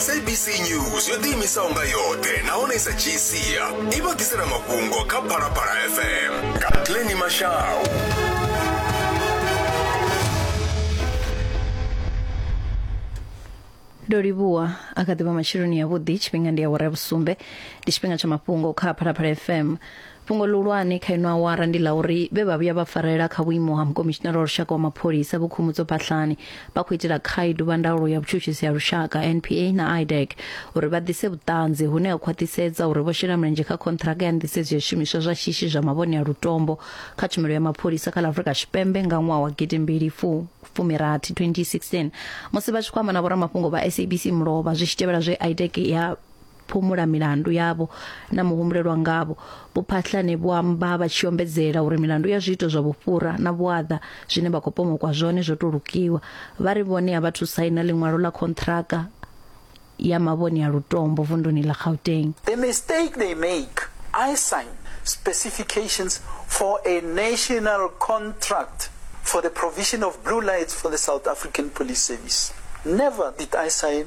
sabc news yo ḓiimisaho nga yoṱhe nahone i sa dzhii sia i vha ḓisela mafhungo kha phalaphala fm nga pleni mashau ndo livhuwa a kha ḓivha matsheloni yavhuḓi tshifhinga ndi awara ya vhusumbe ndi tshifhinga tsha mafhungo kha phalaphala fm Fhungo ḽihulwane kha ino awara ndi ḽa uri vhe vha vhuya vha farela kha vhuimo ha Mukomishinara wa Lushaka wa Mapholisa Vho Khumbudzo Phahlane vha khou itela khaedu vha ndaulo ya vhutshutshisi ha lushaka, NPA, na IDAC uri vha ḓise vhuṱanzi hune ha khwaṱhisedza uri vho shela mulenzhe kha khonṱhiraka ya nḓisedzo ya zwishumiswa zwa shishi zwa mavhone a lutombo kha tshumelo ya mapholisa kha ḽa Afrika Tshipembe nga ṅwaha wa gidimbili fu fumi rathi, 2016. Musi vha tshi khou amba na vhoramafhungo vha SABC mulovha zwi tshi tevhela zwe IDAC ya phumula milandu yavho na muhumbulelwa ngavho. Vho Phahlane vho amba vha tshi ombedzela uri milandu ya zwiito zwa vhufhura na vhuaḓa zwine vha khou pomokwa zwone zwo tou lukiwa. Vha ri vhone a vha thu saina ḽiṅwalo ḽa khonṱhiraka ya mavhoni a lutombo vunduni ḽa Gauteng. The mistake they make, I sign specifications for a national contract for the provision of blue lights for the South African Police Service. Never did I sign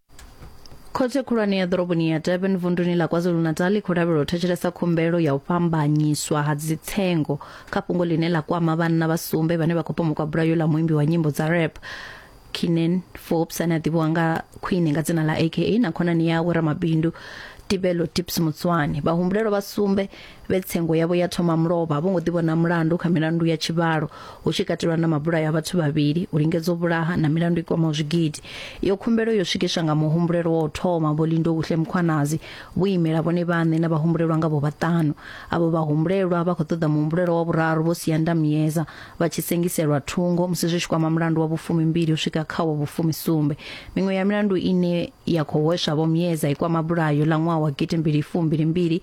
khothe khulwane ya ḓoroboni ya durban vunduni ḽa kwazulu-natal i khou lavhelwa u thetshelesa khumbelo ya u fhambanyiswa ha dzitsengo kha fhungo ḽine ḽa kwama vhanna vha sumbe vhane vha khou pomokwa bulayo ḽa muimbi wa nyimbo dza rap kinen forbes ane a ḓivhiwa nga khwine nga dzina ḽa aka na khonani yawe ramabindu tibelo tips mutswane vhahumbulelwa vha sumbe vhe tsengo yavho ya thoma mulovha vho ngo ḓivhona mulandu kha milandu ya tshivhalo hu tshi katelwa na mabulayo a vhathu vhavhili u lingedza u vhulaha na milandu i kwamaho zwigidi iyo khumbelo yo swikiswa nga muhumbulelo wa u thoma vho lindo huhle mukhwanazi vho imela vhone vhaṋe na vhahumbulelwa nga vho vhaṱanu avho vhahumbulelwa vha khou ṱoḓa muhumbulelo wa vhuraru vho sianda muyeza vha tshi sengiselwa thungo musi zwi tshi kwama mulandu wa vhufumi mbili u swika kha wa vhufumi sumbe miṅwe ya milandu ine ya khou hweswa vho muyeza i kwama bulayo ḽa ṅwaha wa gidi mbili fumbili mbili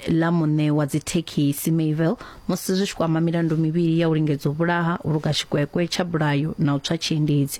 ḽa muṋe wa dzithekhisi Mayville musi zwi tshi kwama milandu mivhili ya u lingedza u vhulaha, u luga tshikwekwe tsha bulayo na u tswa tshiendedzi.